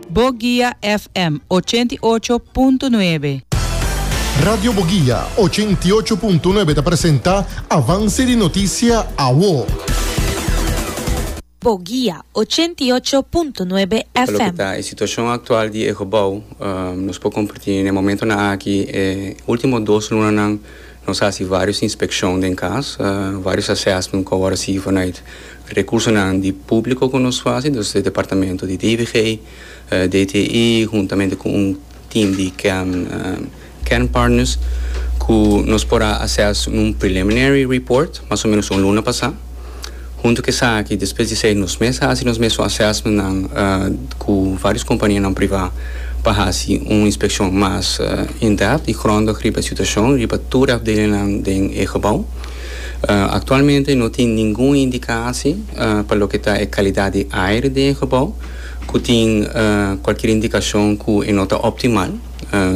Boguia FM ochenta i ocho punto nuebe. Radio Boguia ochenta i ocho punto nuebe ta presenta Avance di Noticia Awo. Boguia ochenta i ocho punto nuebe Pa loke FM. ta e situacion actual di e gebou, nos por comparti n'e momentonan aki e ultimo dos lunanan Nos a hasi vários inspekshon den kas, vários assèsment ku awor a sigui vanuit rekursonan di públiko ku nos fasi, dus di departamento di DVG, DTI huntamente ku un tim di kern partners ku nos por a assès un preliminary report mas o menos un luna pasá. Huntu ku esaki, despues di esei nos mes hasi nos mesun assessmentnan ku vários kompanianan privá pa hasi un inspekshon mas in-depth i grondig riba e situashon riba tur e afdelingnan den e gebou. Aktualmente no tin ningun indikasi pa loke ta e kalidat di aire den e gebou ku tin kualkier indikashon ku e no ta optimal.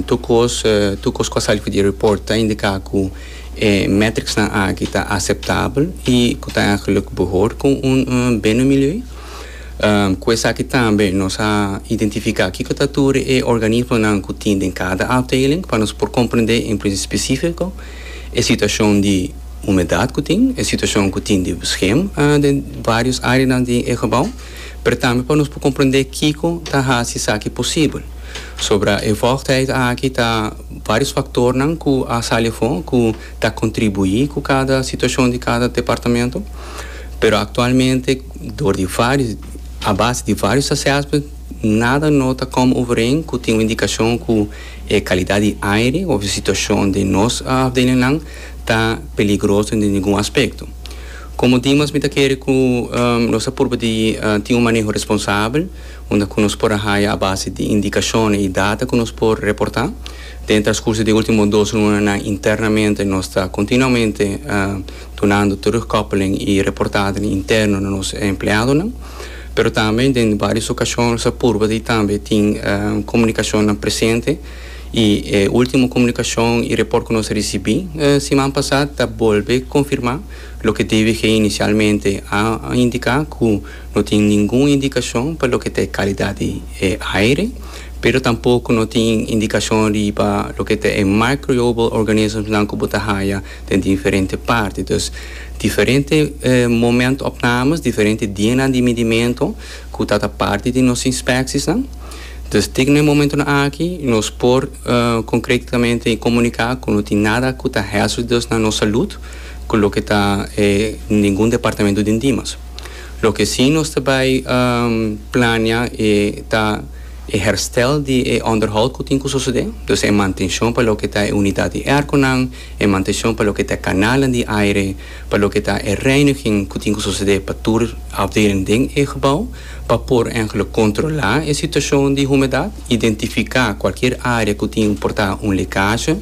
Tur kos tur kos ku a sali for di e report ta indiká ku E metricsnan aki ta aceptabel y cu ta en geluk behoor cu un binnenmilieu. Cu esaki tambe nos a identifica kico ta tur e organismonan cu tin den cada afdeling pa nos por comprende en plis specifico e situacion di humedad cu tin, e situacion cu tin di bescherm den varios areanan di e gebouw, pero tambe pa nos por comprende kico ta haci esaki posibel. Sombra e vochtheid aki ta. Vários faktornan ku a sali afó ku ta kontribuí ku kada situashon di kada departamento, pero aktualmente dor di vários a base di vários assessment nada no ta kòm overeen ku tin un indikashon ku e kalidat di aire òf e situashon den nos afdelingnan ta peligroso den ningun aspekto. Komo dimas mi ta kere ku nos ta purba di tin un maneho responsabel. unda ku nos por a haña a base di indikashonnan i data ku nos por reportá. Den e traskurso di e último dos lunanan internamente nos ta kontinuamente dunando terugkòppeling i reportadonan interno na nos empleadonan. Pero tambe den vários okashon nos a purba di tambe tin komunikashonnan presente i e último komunikashon i report ku nos a risibí siman pasá ta bolbe konfirmá loke DWG inisialmente a indiká ku No tin ningun indikashon pa loke ta e kalidat di e aire, pero tampoko no tin indikashon riba loke ta e microiobal organismsnan ku bo ta haya den diferente parti. Dus diferente moment opnames, diferente dianan di midimento ku ta ta parti di nos inspeksisnan. Dus tin na e momentunan aki nos por konkretamente komunika ku no tin nada ku ta hèzldos na nos salut ku loke ta ningun departamentu den Dimas. Loke sí nos ta bai plania e ta e herstel di e onderhoud ku tin ku sosodé, dus e mantenshon pa loke ta e unidat di èrkonan, e mantenshon pa loke ta e kanalnan di aire, pa loke ta e reiniging ku tin ku sosodé pa tur afdeling den e gebou, pa por ehemplo kontrolá e situashon di humedat, identifiká kualkier área ku tin por ta un lekasje.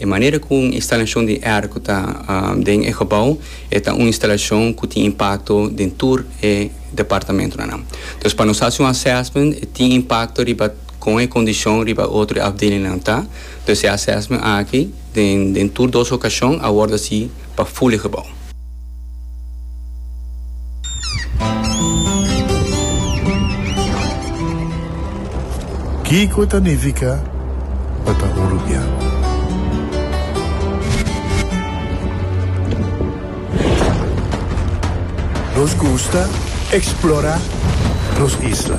E manera ku un instalashon di èr ku ta den e gebou e ta un instalashon ku tin impakto den tur e departamentunan nan. Dus pa nos hasi un assèsment e tin impakto riba kon e kondishon riba e otro afdelingnan ta. Dus e assèsment aki den tur dos okashon a wòrdu hasi pa ful e gebou. Kiko ta nifica pa ta un rubian? Nos gusta explora nos isla.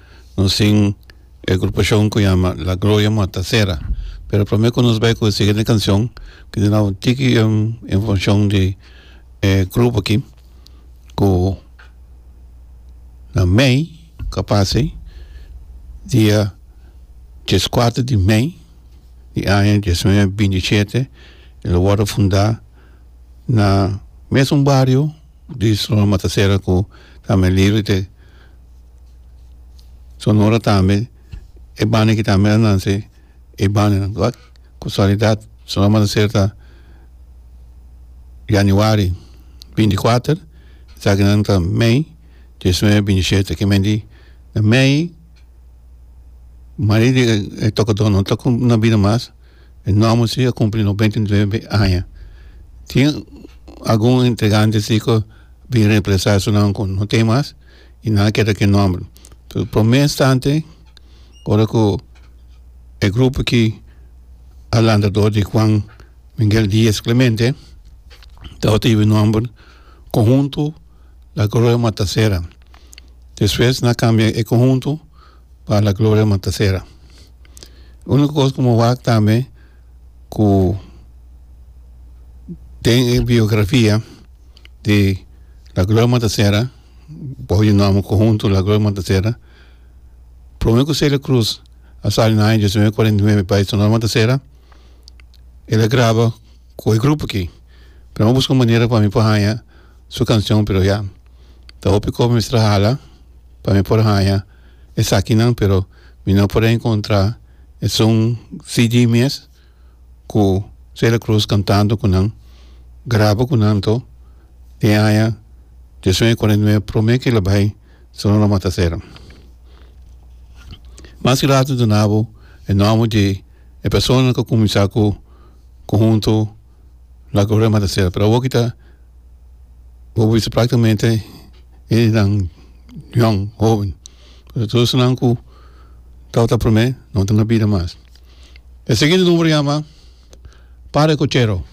nos tin e agrupacion cu yama La Gloria Motacera pero prome cu nos bay cu e siguiente cancion quiere duna un tiki informacion di e grupo aki cu na mei cu a pasey dia diescuater di mei di aña diesnuebe binti siete lo worde funda na mesun bario Di Sonora Matasera cu tambe liri te Sonora tambe e banda ki tambe a nanse e bandanan cu ak casualidad Sonora Matasera ta januari binti kuater esaki nan ta mei diesnuebe binti shete kimen di mei mari di e tokotonan tok na bida mas. E norma si a cumpli noventa y nuebe aña tin algun integrante si cu bin reemplaza asnan cu no ten mas y nan a keda cu e nomber so prome instante ora cu e grupo ki alandrador di juan miguel diaz clemente tabata yiba e nomber conjunto la gloria matasera despues nan a cambia e conjunto pa la gloria man ta sera unico cos cu mi wak tambe cu den e biografia di la gloria man ta sera bajo e nomber conjunto la gloria man ta sera prome cu celia cruz a sali na aña diecinueve cuarenta y nuebe bay su nomber man ta sera el a graba cu e grupo aki pero mi busca manera pa mi por haya su cancion pero ya ta hopi cosa mi mester a hala pa mi por haña esakinan pero mi no por a encontra esun CD mes cu Celia Cruz cantando cu nan graba cu nan to den aña dios nueve cuarenta y nueve prome kil a bay solo lo mata cera mas ki later dunabo e nomber di e persona cu a cuminsa cu conhunto. la corona manda ser pero awo ki ta bo bisa practicamente enan yòn hoben pasobra tur esnan ku tawata ta prome no ta na bida mas e segundo numero yama para cochero.